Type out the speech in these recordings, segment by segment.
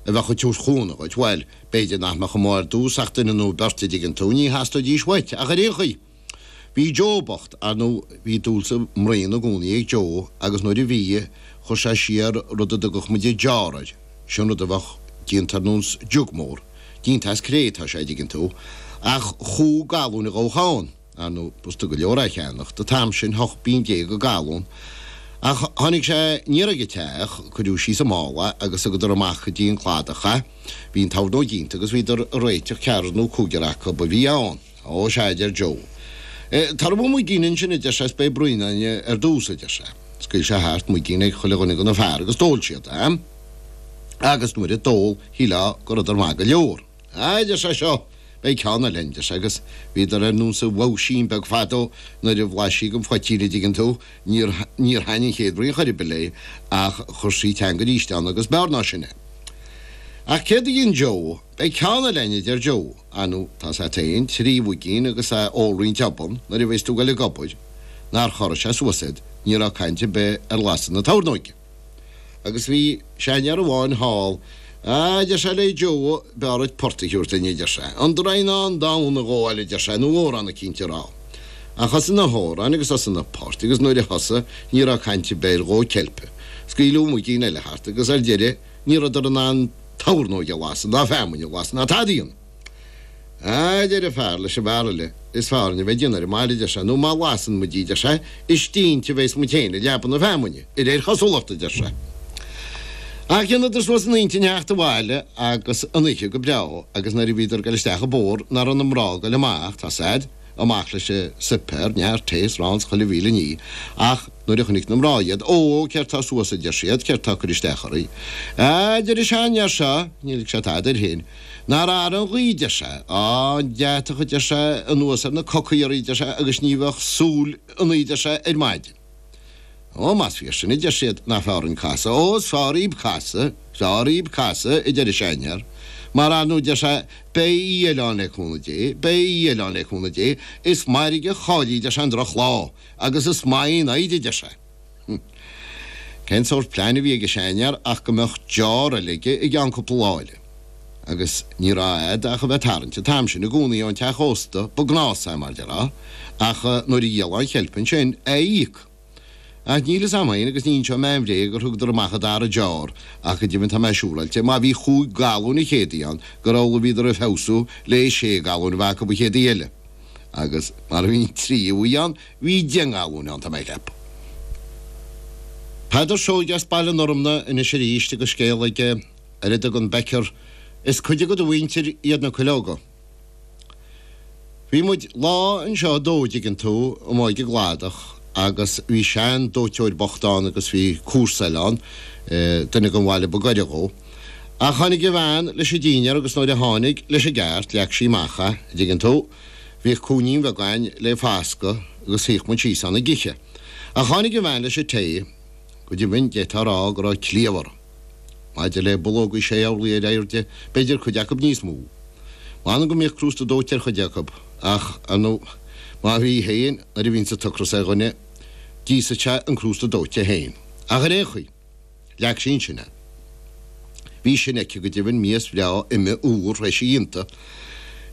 a bheadh ag tabhairt chúnamh dhuit. Bhuel, b'fhéidir nach mbeadh amuigh ar dtús ach duine nó beirt a dtuigeann tú, ní theastóidís uait ach ar aon chaoi. Bhí Joe bocht, ar ndú, bhí dúil sa mbraon i gcónaí ag Joe agus nuair a bhí, chuir sé siar rud a dtugadh muid an jar air, sin rud a bheadh déanta ar nós jug mór, déanta as cré atá sé, a dtuigeann tú, ach chúig galún a ghabhadh ann. Ar ndú, b'fhurasta go leor é a cheannacht an t-am sin, ocht bpínne déag an galún. Ach tháinig sé aniar ag a teach, cuireadh síos sa mála agus thugadar amach go dtí an cladach é. Bhí an tornóg déanta agus bhíodar a' réiteach ceathrar nú cúigear acub a bhí ann. Ó, sea, adeir Joe. Tabhair dhom muigín ansin, adeir sé, 's beidh braon againn ar dtús, adeir sé. Scaoil sé thart muigín ag chuile dhuine go na fir agus d'ól siad é. Agus nuair a d'ól, shílfeá go rabhadar maith go leor. Á, a deir sé seo, beidh ceann eile againn, deir sé, agus bhíodar ar nós an bhoghaisín beag fadó nuair a bhlais sí gon phoitín a' dtuigeann tú, níor, níor thaitn an chéad bhraon chor ar bith léi ach chuir sí a teanga aríst ann agus b'fhearr ná sin é. Ach céard a dhein Joe, beidh ceann eile againn a deir Joe, ar ndú tá a fhios agat féin trí mhuigín agus a' ól roinnt obann nuair a bheas tú goil ag obair, nár chorraigh sé suas iad, ní raibh caint a' bith ar lasadh na tornóige. Agus bhí seanfhear amháin thall. A deir sé le Joe, b'fhearr duit port a thabhairt linn a deir sé. An Draighneán Donn a ghabháil a deir sé nó amhrán eicínt a rá. Ach thosaigh na hamhráin agus thosaigh na poirt agus nuair a thosaigh ní raibh caint ar bith ar dhó ceilpe. Scaoileadh muigín eile thart agus ar deireadh ní rabhadar in ann tornóg a lasadh ná feamainn a lasadh ná tada. A, deir an fear leis an bhfear eile, is feárr linn a bheith ag déanamh ar an mbaile, deir sé, nó má lasann muid í, deir sé, is inti a bhéas muid féin i leaba na feamainne, i réir chosulachta, deir sé. Ach dheineadar suas a n-intinn theacht abhaile agus an oíche go breágh agus nuair a bhíodar ag dul isteach i bpor ná raibh na mná ag dul amach, tá a fhios agat, amach leis an suipéar, neart tae 's 'rán 's chuile mhíle nídh, ach nuair a chonnaic na mná iad, Ó, ó, céard tá suas, a deir siad, céard tá ag cur isteach oraibh? A, deir an sean fhear seo, níl ag sé tada air féin. Nár athraigh an ghaoth deir sé, tá an deatach a deir sé anuas ar na cocaí aríst deir sé agus ní bheadh súil ionainn deir sé ar maidin. Ó más fíor sin a deir siad nach feárr dhúinn casadh, ó is feárr dhíb casadh, is feárr dhíb casadh a deir an seanfhear, mar ar ndú deir sé beidh oíche eile ann le cúnamh Dé, beidh oíche eile ann le cúnamh Dé, is mairg a chaillfí deir sé an droch lá agus is maith í an fhoighid a deir sé. Cén sórt plean a bhí ag a seanfhear ach go mbeadh jar eile aige i gceann cúpla lá eile. Agus ní raibh agat ach a bheith tarraingt an t-am sin i gcónaí ón teach ósta ba gnás mar a déarfá ach nuair a dhíolfá an cheilp ansin, é a íoc! Ach níl a fhios agam fhéin agus ní inseoidh mé aon bhréag gur thugadar amach a dara jar ach go deimhin tá mé siúráilte má bhí chúig galún an chéad oíche ann gur amhlaidh a bhíodar ag feabhsú le sé galún a bheith acu an chéad oíche eile. Agus mar a bhí an tríú oíche ann, Bhí dianghaluinn ann, tá mé ag ceapadh. Peadar Seoige as Baile an Fhormna anois aríst agus scéal aige ar a dtugann Becker 'Is cuid de do mhuintir iad na cuileoga'. Bhí muid lá anseo a' dó, dtuigeann tú, amuigh ag an gcladach agus bhí sean dóiteoir bocht ann agus bhí comharsa eile ann, duine den bhaile ba gaire dhó. Ach tháinig a bhean leis a' dínnéar agus nuair a tháinig, leis a' gceart, leag sí amach é, dtuigeann tú, Bhíodh cúinnín bheag againn le fascadh agus shuíodh muid síos ann ag ithe. Ach tháinig an bhean leis an tae. Go deimhin d'fhéadfá a rá go raibh cliabh uirthi. Maidir le bulógaí sé n-orlaí ar airde b'fhéidir cuid acu níos mó. M'anam go mbíodh crústa dóite ar chuid acu ach ar ndó' má bhí féin nuair a bhíonns an t-ocras ar dhuine d'íosfadh sé an crústa dóite féin. Ach ar aon chaoi. Leag sí ansin é. Bhí sin aici go deimhin mias bhreá ime úr théis a dhéanta.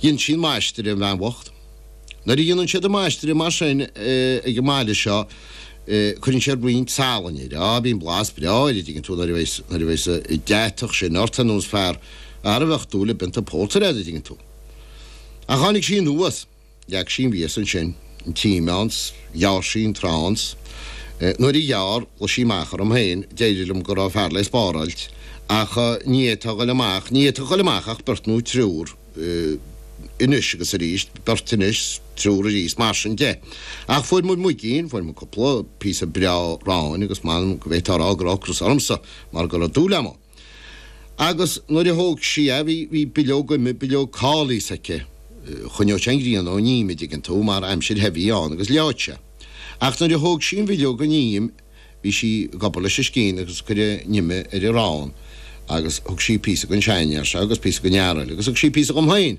Dhein sí an maistreadh an bhean bhocht. Nuair a dhéanann siad an maistreadh mar sin ag an mbaile seo cuireann siad roinnt salainn air. Á, bíonn blas breá air, a dtuigeann tú, nuair a bhíos, nuair a bhíos, an tart sin ort ar nós fear a mbeadh dúil i bpionta pórtair aige, a dtuigeann tú. Ach tháinig sí anuas. Leag sí an mhias ansin an t-im ann is ghearr sí an t-arán is Nuair a ghearr ghlaoigh sí amach orm féin D'éirigh liom go raibh fear lé spáráilt ach ní fhéadfá ghoil amach ní fhéadfá ghoil amach ach beirt nó triúr anois agus arís beirt anois triúr arís mar sin de ach fuair muid muigín fuair muid cúpla píosa breá aráin agus m'anam go bhféadfá a rá go raibh ocras ormsa mar go raibh dúil agam ann. Agus nuair a thóg sí é bhí, bhí bileog ime, bileog cóilis aici. Choinneodh sé an ghrian ón im, a' dtuigeann tú, mar aimsir the a bhí ann agus leáfadh sé. Ach nuair a thóg sí an bhileog gon im bhí sí ag obair leis an scian agus ag cur an ime ar an arán agus thug sí píosa gon seanfhear seo agus píosa gon fhear eile agus thug sí píosa dhom féin.